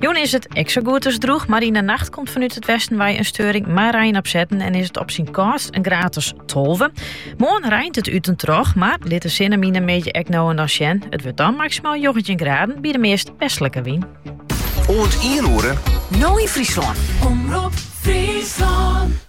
Jûn is it ek zo goed as droeg, maar in de nacht komt vanuit het westen wij een steuring maar rein opzetten en is het op zijn kast een gratis tolve. Morgen rijnt het uit en troch, maar litte zinnenmine een beetje ek nou en dan sjen. Het wordt dan maximaal 19 graden bij de meest westelijke wien. Oant 1 oere. Nou in Friesland. Omroep Friesland.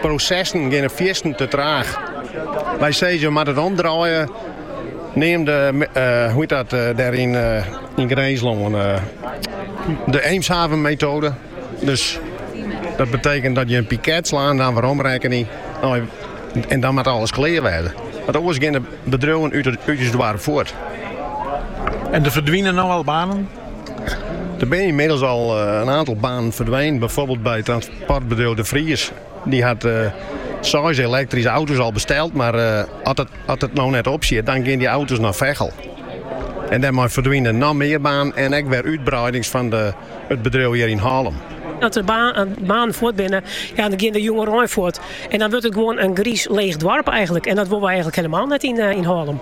Prosessen geane fierstente te traach. Wy sizze jo moatte it omdraaie, neamden se dat dêr yn Grinslân de Eemshavenmetoade. Dus dat betekent dat je in piket slaan, dan werom rekkenje en dan moat alles klear wêze. Want oars geane bedriuwen út it doarp fuort. En der ferdwine no al banen. Der binne ynmiddels al in aantal banen ferdwûn, byfoarbyld by transportbedriuw De Vries. Dy hat seis elektryske auto's al besteld, mar as it no net opsiet, dan gean dy auto's nei Veghel. En dêrmei ferdwine noch mear banen en ek wer útbreidings fan it bedriuw hjir yn Hallum. As der banen fuort binne, ja, dan gean der jongerein fuort. En dan wurdt it gewoan in griis leech doarp eigenlik. En dat wolle wy eigenlik helemaal net yn Hallum.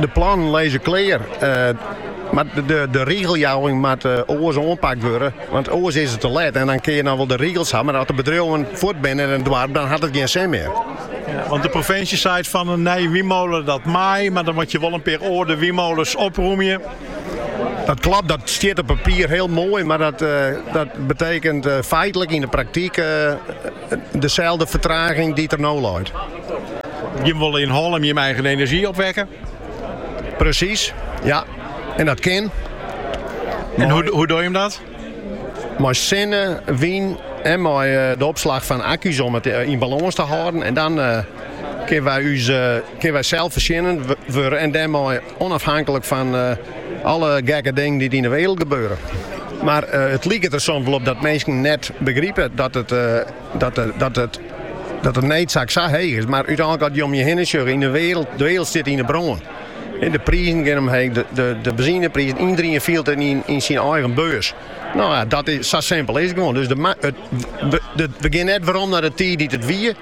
De plannen lizze klear, mar de rigeljouwing moat oars oanpakt wurde, want oars is it te let. Dan kinne je noch wol de rigels ha, mar as de bedriuwen fuort binne yn it doarp, dan hat it gjin sin mear. Want de provinsje seit fan in nije wynmole dat mei, mar dan moat je wol in pear âlde wynmoles oprûmje. Dat klopt, dat stiet op papier hiel moai, mar dat betekent feitlik yn de praktyk. Deselde fertraging dy't der no leit. Jim wolle yn Hallum jim eigen enerzjy opwekke. Presys, ja. En dat kin. En hoe dogge jim dat? Mei sinne, wyn en mei de opslach fan akku's om it yn balâns te hâlden. En dan kinne wy selsfoarsjennend wurde en dêrmei Onafhanklik fan alle gekke dingen dy't yn de wereld gebeure. Mar it liket der soms wol op dat minsken net begripe dat de needsak sa heech is. Mar úteinlik as je om je hinne sjogge yn de wereld, de wereld stiet yn de brân. De prizen gean omheech, de benzineprizen, elkenien fielt it yn syn eigen beurs. Sa simpel is it gewoan. Dus we gean net werom nei de tiid dat it wie.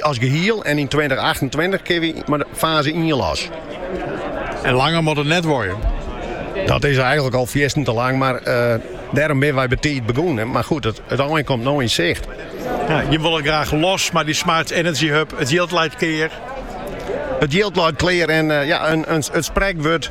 As gehiel en yn tweintichachtentweintich kinne wy mei faze ien los. En langer moat it net duorje. Dat is eigenlik al fierstente te lang, mar dêrom binne wy betiid begûn. Mar goed, it ein komt no yn sicht. Jimme wolle graach los mei dy Smart Energy Hub. It jild leit klear. It jild leit klear en ja, it sprekwurd.